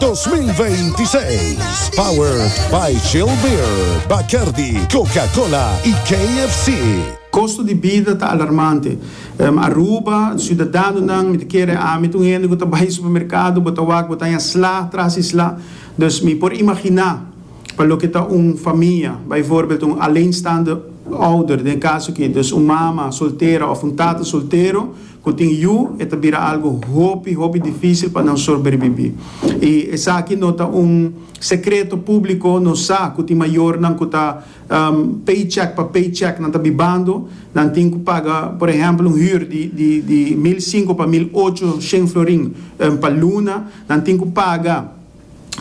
2026. Powered by Chill Beer, Bacardi, Coca-Cola y KFC. Kosto di bida ta alarmante. Aruba, siudadanonan, mi ta kere ami ta un hende ku ta bai supermerkado, bo ta wak bo ta haña sla tras di sla. Dus mi por imaginá pa loke ta un famia, bijvoorbeeld un alleenstaande ouder den e kaso aki, dus un mama soltera òf un tata soltero, Cu tin yu e ta bira algo hopi, hopi dificil pa nan sorberbibi. Y esaki no ta un secreto publico, nos sa cu tin mayornan cu ta paycheck pa paycheck nan ta bibando, nan tin cu paga por ehempel un huur di di mil cinco pa mil ocho shen florin pa luna, nan tin cu paga.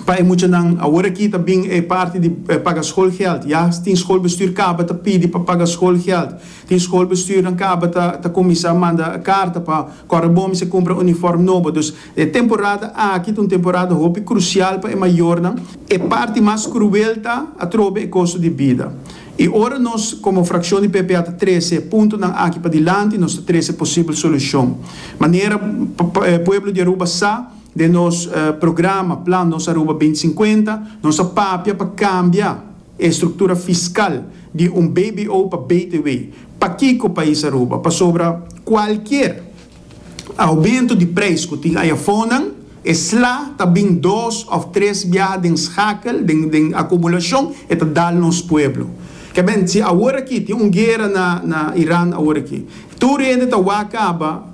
pa e muchanan. Awor aki ta bin e parti di paga skolgèld. Ya tin skolbestuur kaba ta pidi pa paga skolgèld. Tin skolbestuurnan kaba ta ta kuminsá manda karta pa kòrre bon mester kumpra unifòrm nobo. Dus e temporada aki ta un temporada hopi krusial pa e mayornan. E parti mas kruel ta atrobe e kosto di bida. I ora nos komo frakshon di PPA ta trese e puntonan aki padilanti, nos ta trese posibel solushon. Manera pueblo di Aruba sa. Den nos programa Plan Nos Aruba binti sinkuenta, nos a papia pa kambia e struktura fiskal di un bbo pa btw. Pakiko pais Aruba? Pasobra kualkier aumento di preis ku tin ayafonan, e sla ta bin dos òf tres biaha den skakel, den akumulashon, e ta dal nos pueblo. Kèmen, si aworakí tin un guera na Iran aworaki, tur hende ta wak kaba.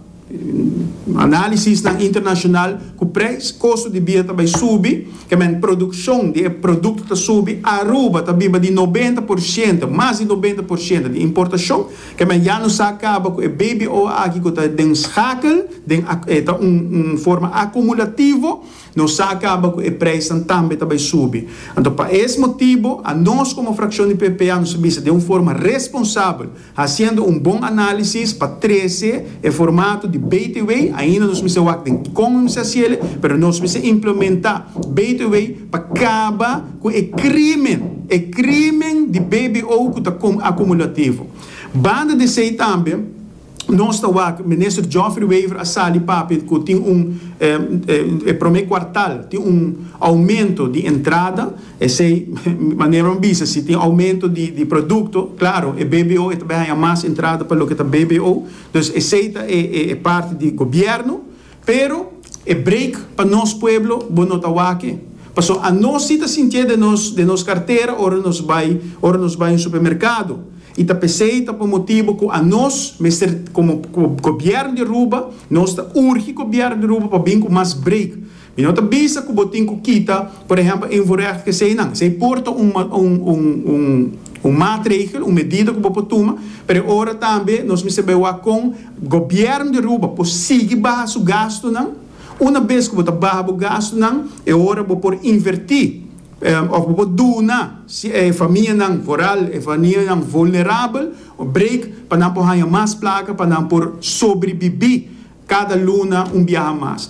Analisisnan internashonal ku preis kosto di bida ta bai subi, kemen produkshon di e produkto ta subi, Aruba ta biba di nobenta por shente, mas di nobenta por shente, di importashon, kemen ya no sa kaba ku e BBO aki ku ta den skakel, den a e ta un un forma akumulativo, no sa kaba ku e preisnan tambe ta bai subi. Anto pa es motibo, anos komo frakshon di PPA nos a bisa den un forma responsabel, Hasiendo un bon análisis pa trece e formato di Beitewei, ainda nos mester wak den con un mester hasiele, pero nos mester implementa Beitewei pa caba cu e crimen, e crimen di bbo cu ta acumulativo. Banda di esey tambe nos ta wak Minister Geoffrey Wever a sali papia cu tin un, e prome cuartal tin un aumento di entrada, Esei manera un bisa, si tin aumento di di produkto, klaro e BBO e ta bay haña mas entrada pa loke ta BBO, dus esei ta e e e parti di gobièrnu, pero e break pa nos pueblo bo no ta wak-e, pasobra anos si ta sintié den nos den nos kartera ora nos bay ora nos bay un supermerkado, i ta p'esei ta por motibu ku anos mester komo gobièrnu di Aruba nos ta urgi gobièrnu di Aruba pa bin ku mas break. Mi no ta bisa ku bo tin ku kita, por ehèmpel, e invoerrecht ku esei nan. Esei por ta un, un, un, un maatregel, un medida ku bo por tuma, pero e ora tambe nos mester bai wak kon gobièrnu di Aruba por sigui baha su gastunan. Una bes ku bo ta baha bo gastunan, e ora bo por invertí òf bo por duna si e famianan vooral e famianan vulnerabel un break pa nan por haña mas plaka pa nan por sobribibí kada luna un biaha mas.